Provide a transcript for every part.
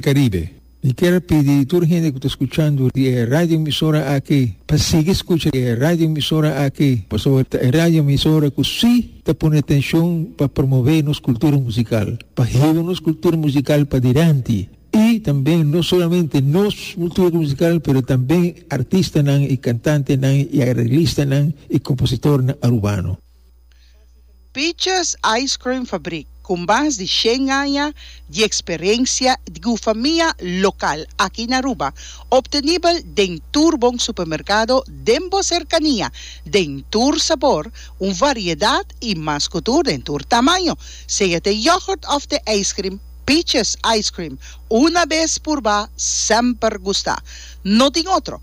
Caribe. Mi kier pidi tur hende cu ta scuchando di e radioemisora aki pa sigui scucha di e radioemisora aki pasobra ta e radioemisora cu si ta pone atencion pa promove nos cultura musical, pa hiba nos cultura musical padilanti y tambe no solamente nos cultura musical pero tambe artistanan y cantantenan y arreglistanan y compositornan Arubano. Peaches Ice Cream Fabrik, ku mas di shen aña di eksperensia di gufamia lokal aki na Aruba, optenibel den tur bon supermerkado den bo serkania, den tur sabor, un variedat i mas ku tur den tur tamaño. Sea t'e yogurt òf t'e ijskrim, Peaches Ice Cream, una bes purba, semper gusta. No tin otro.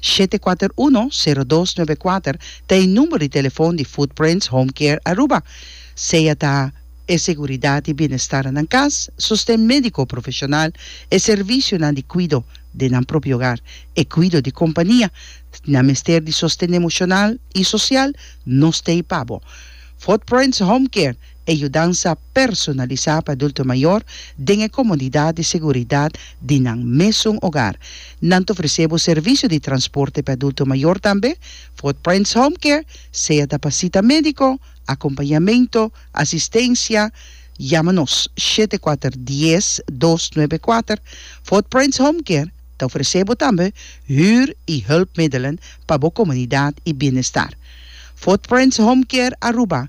shete kuater uno, sero dos nove kuater ta e number di telefon di Footprints Home Care Aruba. Sea ta e seguridad di bienestar nan cas, sosten medico profesional, e servicionan di cuido den nan propio hogar, e cuido di compania, nan mester di sosten emocional y social, nos ta ey pa bo. Footprints Home Care, e yudansa. personalisá pa adulto mayor den e komodidat di seguridat di nan mesun ogar. Nan ta ofresé bo servisio di transporte pa e adulto mayor tambe, Footprints Home Care, sea ta pa sita médiko, akompañamentu, asistensia. Yama nos shete kuater dies dos nuebe kuater. Footprints Home Care ta ofresé bo tambe hür i hulpmiddelen pa bo komodidat i bienestar. Footprints Home Care Aruba.